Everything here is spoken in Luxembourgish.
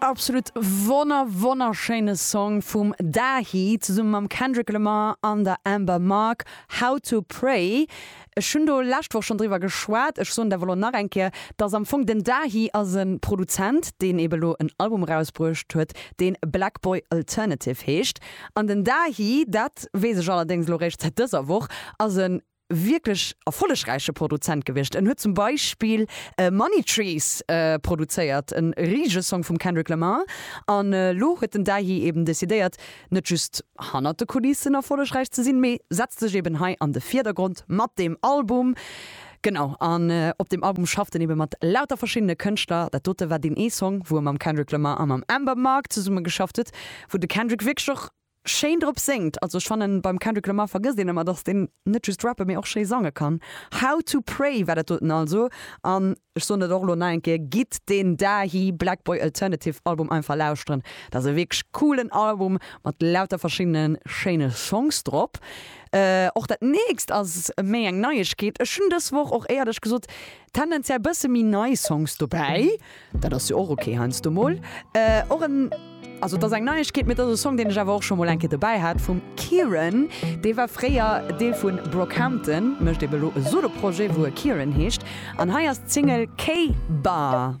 Absolut wonner wonnerschéine Song vum Dahi zesumme mam Kendrick Lamar an der Amber Mark, How to Pray. Ech hunn do lescht Woch schonn driwwer geschwat, ech soen et awer elo nach eng Kéier, dass am Fong den Dahi ass e Produzent, deen ebe lo en Album erausbruecht huet, dee Black Boy Alternative heescht. An den Dahi, dat weess ech allerdéngs elo réischt säit dëser Woch, ass e wierklech erfollegräiche Produzent gewiescht. En huet zum Beispill Money Trees produzéiert, e risege Song vum Kendrick Lamar. An elo huet den Dahi eben decidéiert, net just hannert de Kulissen erfollegräich ze sinn, mee setzt sech eben hei an de Virdergrond mat deem Album. Genau, an op deem Album schafft en ebe mat lauter verschiddene Kënschtler. Dat dote war deen ee Song, wou e mam Kendrick Lamar a mam Amber Mark zesummegeschafft huet, wou de Kendrick wierklech och schéin drop séngt. Also ech fannen, beim Kendrick Lamar vergësst een ëmmer, datt deen net just rappe mee och schéi sange kann. How to Pray war dat doten also. An ech soen dat och elo nach eng Kéier, Gitt deen Dahi Black Boy Alternative Album einfach lauschteren. Dat ass e wierklech coolen Album mat lauter verschiddene schéine Songs drop. Och dat nächst ass méi eng Neiegkeet. Ech hunn dës Woch och éiert ech gesot, tendenziell bësse méi nei Songs dobäi. Dat ass jo och ok heiansdo mol. Och en, also et ass eng Neiegkeet, mee et ass e Song, deen ech awer och scho mol eng Kéier dobäi hat, vum Kieran. Dee war fréier Deel vu Brockhampton, mécht ebe lo e Solo-Projet, wou e Kieran heescht. An hei ass d'Single Kay Barr.